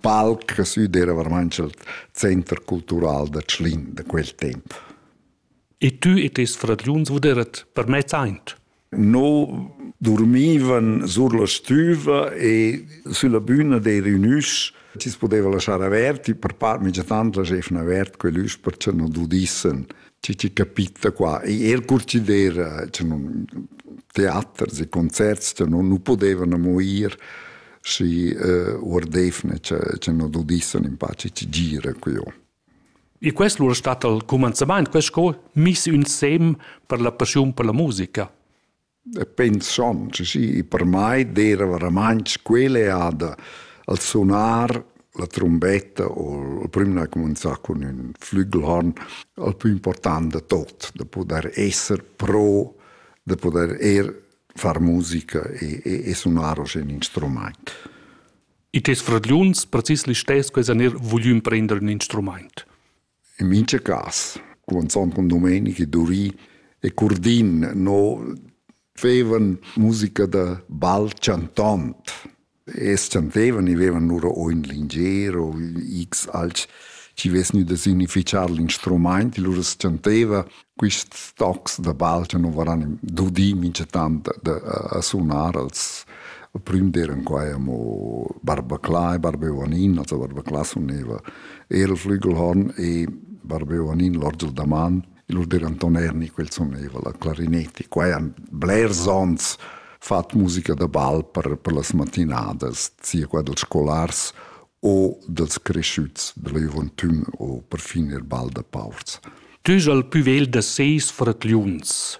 palc süd era vermanch il center cultural da Tschlin da quel temp. E tu e tes fragliuns vuderet per mez aint? No dormivan sur la stüva e sulla büna dei reunus ci poteva lasciar averti per par migiatand la schefna avert quell'üs per che non udissen ci ci capitta qua e er curcidera cioè non teater e concerts cioè non nu potevano moir și uordefne ce no dodissen in pace ci gira quio. E quest lur stat al commenzament, quest co mis ün sem per la passiun per la musica. Pens schon, sì, per mai era veramente quelle ad al sonar la trombetta o il primo a cominciare con un flugelhorn il più importante tot, da poter essere pro, da poter er far musica e, e, e sunar oz in instrumaint. I tes fradgliuns precis listess quesa ner voglü imprender un instrumaint? In mincha cas, con Sonton Domenici, Duri e Curdin no fevan musica da bal chantont, Essan vevan, i vevan lura o ün lingier o x alch chi vess gnü da significhar l'instrumaint, lura as chanteva quists tocs da balcha nu varan dudi minchatant da a sunar als il prüm d'eiran quai amo Barbaclà e Barbeoanin, also Barbaclà suneva eir il Flügelhorn e Barbeoanin l'orgel da man Il Urder Anton Erni quel soneva la clarinetti. Qua han blers ons fat musica da ball per, per las matinadas, sia qua dels scolars o dels cresciuts della juventüm o perfin il ball da paurs. Tüs al püvel da seis fragliuns.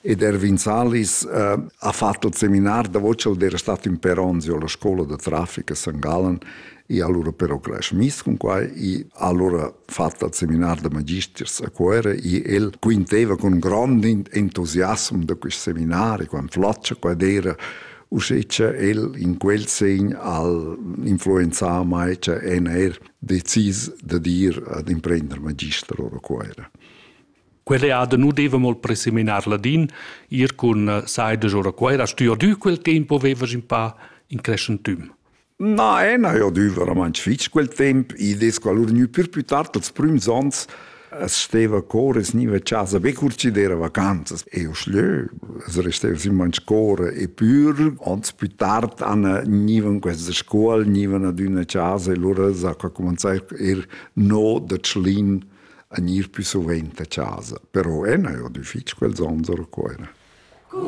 Ed Erwin Salis uh, ha fatto il seminar, da voce era stato in Peronzio, alla scuola di traffico a San Gallen, e allora però cresce mis con qua e allora fatto il seminar da magisters a Cuera e el quinteva con un grande entusiasmo da questo seminario, quando floccia, quando era uscece el in quel segn al influenzar mai cioè en er decis da dir ad imprender magister ora Cuera. Quell'eada nu devem ol preseminar ladin, ir cun eh, saidas or a Cuera. Hast tü adü quel tempo vevas in pa in crescentüm? Na, e na, io adü verament fich quel temp. I des qualur gnü pür più tard als prüms ans es steva cor es gniva a casa be cur chi d'era vacanzas. E io schlö, es resteva simman score e pür. Ans più tard an gnivan questa scuol, gnivan ad üna casa e lura s'ha cumanzà er no da Tschlin a gnir pü suvent a chasa, però ena eau do fich quels ons a Cuoira.